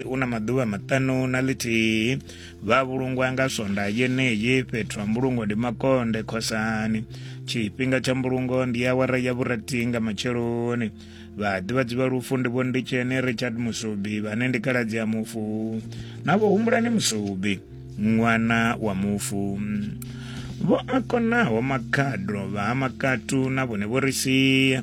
u na maḓuvha maṱanu na ḽithihi vha vhulungwa nga swonda yeneyi fhethu ha mbulungo ndi makonde khosani tshifhinga tsha mbulungo ndi awara ya vhurathi nga matsheloni vhaḓivhadzi vha lufu ndi vho nditsheni richard musubi vhane ndi kaladzi ya mufu na vho humbulani musubi ṅwana wa mufu vho a konaho makhadro vha ha makatu na vhone vho ri sia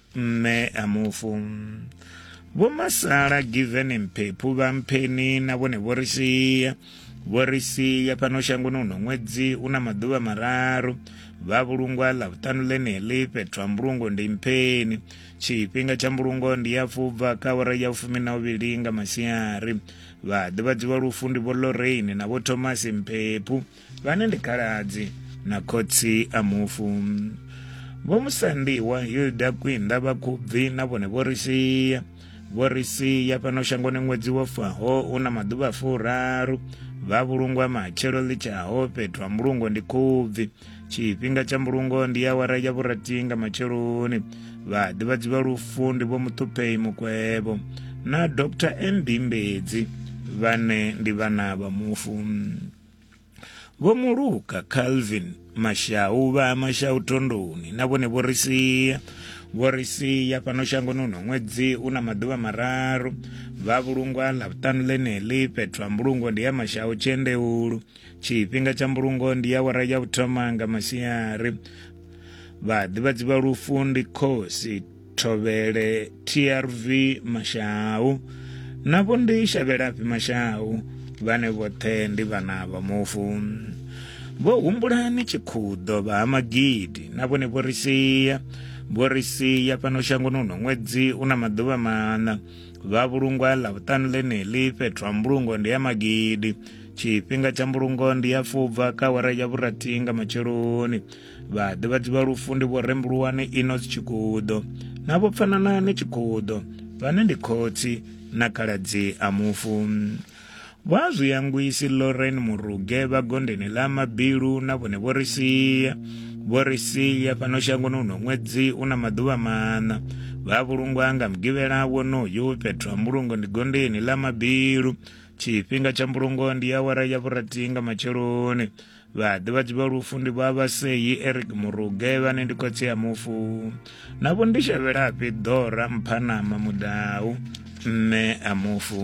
mme a mufu vho masala given mphephu vha mpheni na vhone vho ri sia vho ri sia fhano shangoni uno ṅwedzi una maḓuvha mararu vha vhulungwa ḽa vhuṱanu ḽeneḽi fhethu ha mbulungo ndi mpheni tshifhinga tsha mbulungo ndi ya fubva ka awara ya fumi na uvhili nga masiari vhaḓivhadziwa lufu ndi vho lorraine na vho thomas mphephu vhane ndi khaladzi na khotsi a mufu vho musandiwa hilda kwinda vhakhubvi na vhone vho ri sia vho ri sia fhano shangoni ṅwedzi wo faho u na maḓuvha furaru vha vhulungwa matshelo ḽi tshaho fhethu ha mbulungo ndi khubvi tshifhinga tsha mbulungo ndi awara ya vhurathi nga matsheloni vhaḓivhadzi vha lufu ndi vho muṱhuphei mukwevho na dr nd mbedzi vhane ndi vhana vha mufu Vho Muluka Calvin Mashau vha Mashau Thondoni na vhone vho ri sia vho ri sia fhano shangoni uno ṅwedzi u na maḓuvha mararu vha vhulungwa ḽa vhuṱanu ḽeneḽi fhethu ha mbulungo ndi ya Mashau Tshendeulu tshifhinga tsha mbulungo ndi ya wara ya vhuthoma nga masiari vhaḓivhadzi vha lufu ndi khosi thovhele trv mashau navho ndi shavhelafhi mashau vhane vhoṱhe ndi vhana vha mufu vho humbulani tshikhuḓo vha ha magidi na vhone vho ri sia vho ri sia fhano shangoni uno ṅwedzi u na maḓuvha maṋa vha vhulungwa ḽa vhuṱanu ḽeneḽi fhethu ha mbulungo ndi ya magidi tshifhinga tsha mbulungo ndi ya fubva kha awara ya vhurathi nga matsheloni vha ḓivhadzi vha lufu ndi vho rembuluwani inos tshikudo na vho pfananani tshikudo vhane ndi khotsi na khaladzi a mufu vha zwiyangwisi loren muruge vha gondeni ḽa mabilu na vhone vho ri sia vho ri sia fhano shangoni uno ṅwedzi u na maḓuvha maṋa vha vhulungwa nga mugivhela wonoyu fhethu ha mbulungo ndi gondeni ḽa mabilu tshifhinga tsha mbulungo ndi awara ya vhurathi nga matsheloni vhaḓivhadzi vha lufu ndi vha vhaseyi eric muruge vhane ndi khotsi ya mufu navho ndi shavhelafhi ḓora mphanama mudau mme a mufu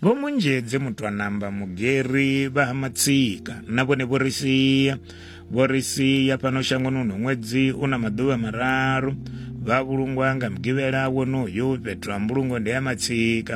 vho munzhedze muthu a namba mugeri vha ha matsika na vhone vho ri sia vho ri sia fhano shangoni uno ṅwedzi u na maḓuvha mararu vha vhulungwa nga mugivhela wonoyo fhethu ha mbulungo ndi ha matsika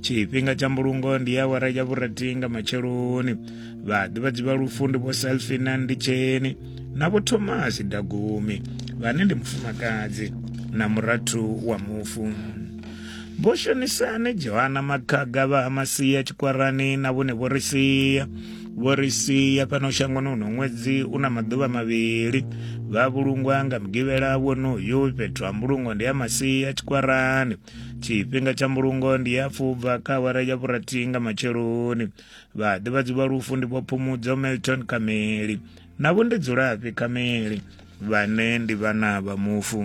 tshifhinga tsha mbulungo ndi ya awara ya vhurathi nga matsheloni vhaḓivhadzi vha lufu ndi vho salfina nditsheni na vho thomasi dagumi vhane ndi mufumakadzi na murathu wa mufu vho shonisani johana makhaga vha ha masia tshikwarani na vhone vho ri sia vho ri sia fhano shangoni uno ṅwedzi u na maḓuvha mavhili vha vhulungwa nga mugivhela wonoyu fhethu ha mbulungo ndi ya masia tshikwarani tshifhinga tsha mbulungo ndi ya fubva kha awara ya vhurathi nga matsheloni vhaḓivhadzi vha lufu ndi vhophumudzo milton kameli na vho ndi dzulafhi kameli vhane ndi vhana vha mufu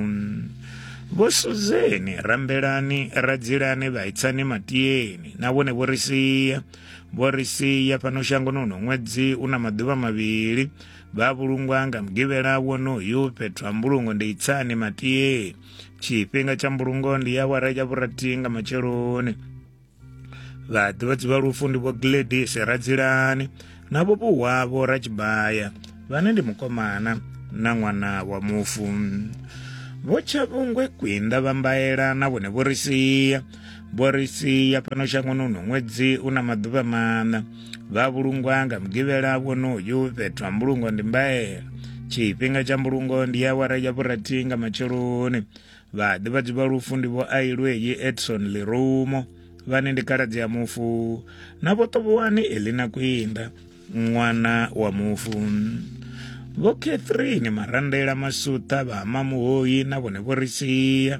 vho suzeni rambelani radzilani vhaitsani matiyeni na vhone vho ri sia vho ri sia fhano shangoni uno ṅwedzi u na maḓuvha mavhili vha vhulungwa nga mugivhela wonoyu fhethu ha mbulungo ndi itsani matiyeni tshifhinga tsha mbulungo ndi ya awara ya vhurathi nga matsheloni vhaḓivhadzi vha lufu ndi vho gladis radzilani na vho vhuwavho ratshibaya vhane ndi mukomana na ṅwana wa mufu vho tshavhungwe kwinda vha mbaela na vhone vho ri sia vho ri sia fhano shangoni uno ṅwedzi u na maḓuvha maṋa vha vhulungwa nga mugivhela wonoyu fhethu ha mbulungo ndi mbaela tshifhinga tsha mbulungo ndi ya awara ya vhurathi nga matsheloni vhaḓivhadzi vha lufu ndi vho ailweyi edson lirumo vhane ndi khaladzi ya mufu na vho ṱovhowane elina kwinda ṅwana wa mufu vho catherine marandela masuṱa vha mamuhoyi na vhone vho ri sia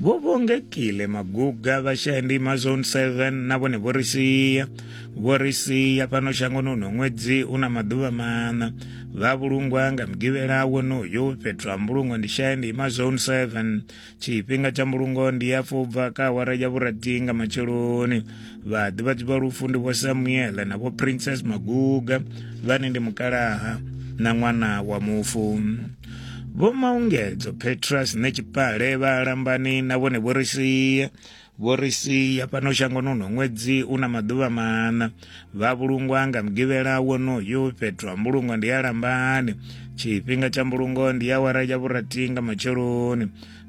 vho vhongekile maguga vha shaya ndima zone 7 na vhone vho ri sia vho ri sia fhano shangoni uno ṅwedzi u na maḓuvha maṋa vha vhulungwa nga mugivhela wonoyo fhethu ha mbulungo ndi shaya ndima zone 7 tshifhinga tsha mbulungo ndi ya fubva ka awara ya vhurathi nga matsheloni vhaḓivhadzi vha lufu ndi vho samuele na vho princess maguga vhane ndi mukalaha na ṅwana wa mufu vho maungedzo petrus ne tshipale vha lambani na vhone vho ri sia vho ri sia fhano shangoni uno ṅwedzi u na maḓuvha maṋa vha vhulungwa nga mugivhela wonoyu fhethu ha mbulungo ndi ya lambani tshifhinga tsha mbulungo ndi ya wara ya vhurathi nga matsheloni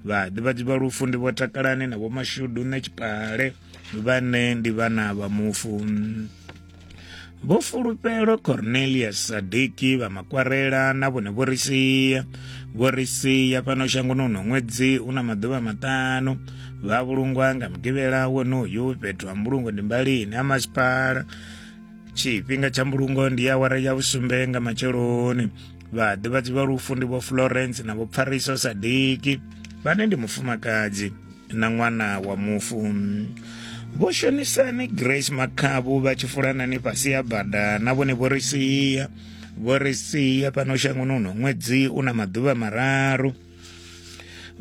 vhaḓivhadzi vha lufu ndi vho takalani na vho mashudu nṋe tshipale vhane ndi vhana vha mufu vho fulufhelo cornelius sadiki vha makwarela na vhone vho ri sia vho ri sia fhano shangoni uno ṅwedzi u na maḓuvha maṱanu vha vhulungwa nga mugivhela wonoyu fhethu ha mbulungo ndi mbalini ha masipala tshifhinga tsha mbulungo ndi awara ya vhusumbe nga matsheloni vhaḓivhadzi vha lufu ndi vho florence na vho pfariso sadiki vhane ndi mufumakadzi na ṅwana wa mufu vho shonisani grace makhabu vha tshi fulanani fhasi ya bada na vhone vho ri sia vho ri sia fhano shangoni uno ṅwedzi u na maḓuvha mararu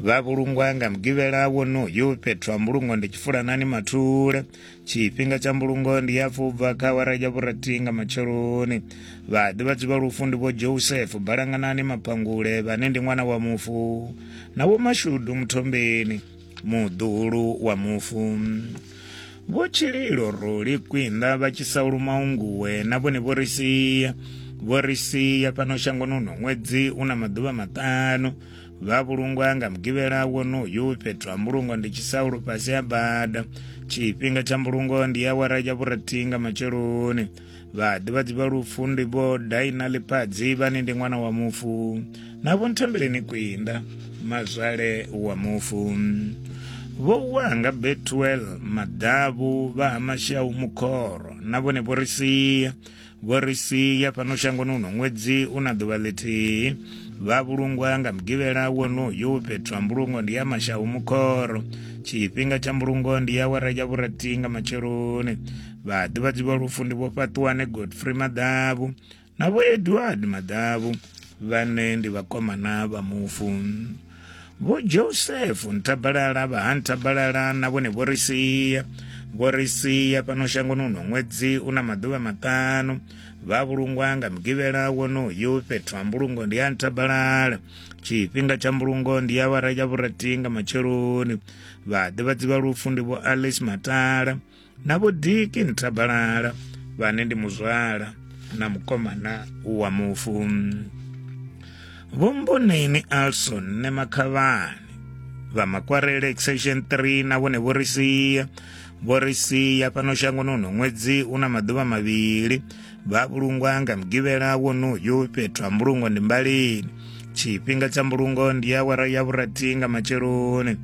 vha vhulungwa nga mugivhela wonoyu fhethu ha mbulungo ndi tshifulanani mathule tshifhinga tsha mbulungo ndi ya fubva kha awara ya vhurathi nga matsheloni vhaḓivhadzi vha lufu ndi vho joseph balanganani mapangule vhane ndi ṅwana wa mufu na vho mashudu muthombeni muḓulu wa mufu vho tshililo ruli kwinda vha tshi sa luma unguwe na vhone vho ri sia vho ri sia fhano shangoni uno ṅwedzi u na maḓuvha maṱanu vha vhulungwa nga mugivhela wonoyu fhethu ha mbulungo ndi tshisaulo fhasi ha bada tshifhinga tsha mbulungo ndi awara ya vhurathi nga matsheloni vhaḓivhadzi vha lufu ndi vho daina ḽipadzi vhane ndi ṅwana wa mufu na vho nthembeleni kwinda mazwale wa mufu vho vuwa nga betwel maḓavhu vha ha mashau mukhoro na vhone vho ri sia vho ri sia fhano shangoni uno ṅwedzi u na ḓuvha ḽithihi vha vhulungwa nga mugivhela wonoyu fhethu ha mbulungo ndi ya mashau mukhoro tshifhinga tsha mbulungo ndi ya wara ya vhurathi nga matsheloni vhaḓivhadzi vha lufu ndi vho fhaṱuwane godfrey maḓavhu na vho edward maḓavhu vhane ndi vhakomana vha mufu vho joseph nthabalala vha ha nthabalala na vhone vho ri sia vho ri sia fhano shangoni uno ṅwedzi u na maḓuvha maṱanu vha vhulungwa nga mugivhela wonoyu fhethu ha mbulungo ndi ha nthabalala tshifhinga tsha mbulungo ndi ya vhara ya vhurathi nga matsheloni vhaḓivhadzi vha lufu ndi vho alice matala na vho diki nthabalala vhane ndi muzwala na mukomana wa mufu vho mboneni alson ne makhavhani vha makwarele exception 3 na vhone vho ri sia vho ri sia fhano shangoni uno ṅwedzi una maḓuvha mavhili vha vhulungwa nga mugivhela wonoyu fhethu ha mbulungo ndi mbalini tshifhinga tsha mbulungo ndi ya wara ya vhurathi nga matsheloni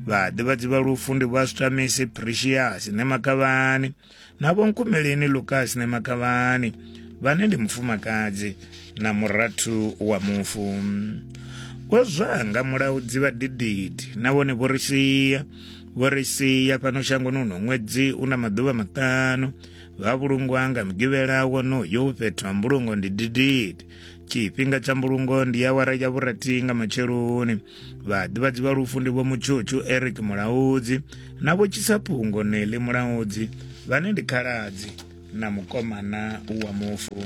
vhaḓivhadzi vha lufu ndi vha switamisi precious ne makavhani na vhonkumeleni lucas ne makavhani vhane ndi mufumakadzi na murathu wa mufu vho zwanga mulaudzi vha dididi na vhone vho ri sia vho ri sia fhano shangoni uno ṅwedzi u na maḓuvha maṱanu vha vhulungwa nga mugivhela wonoyo fhethu ha mbulungo ndi didid tshifhinga tsha mbulungo ndi awara ya vhurathi nga matsheloni vhaḓivhadzi vha lufu ndi vho mutshutshu eric mulaudzi na vho tshisaphungo neli mulaudzi vhane ndi khaladzi na mukomana wa mufu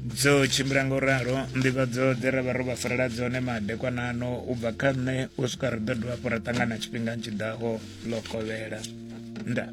dzo tshimbila nga u ralo nḓivhadzo dze ra vha ro vha farela dzone madekwanano u bva kha nṋe u swika ri ḓo dovha hafhu ra ṱangana tshifhingani tshi ḓaho ḽo kovhela ndaa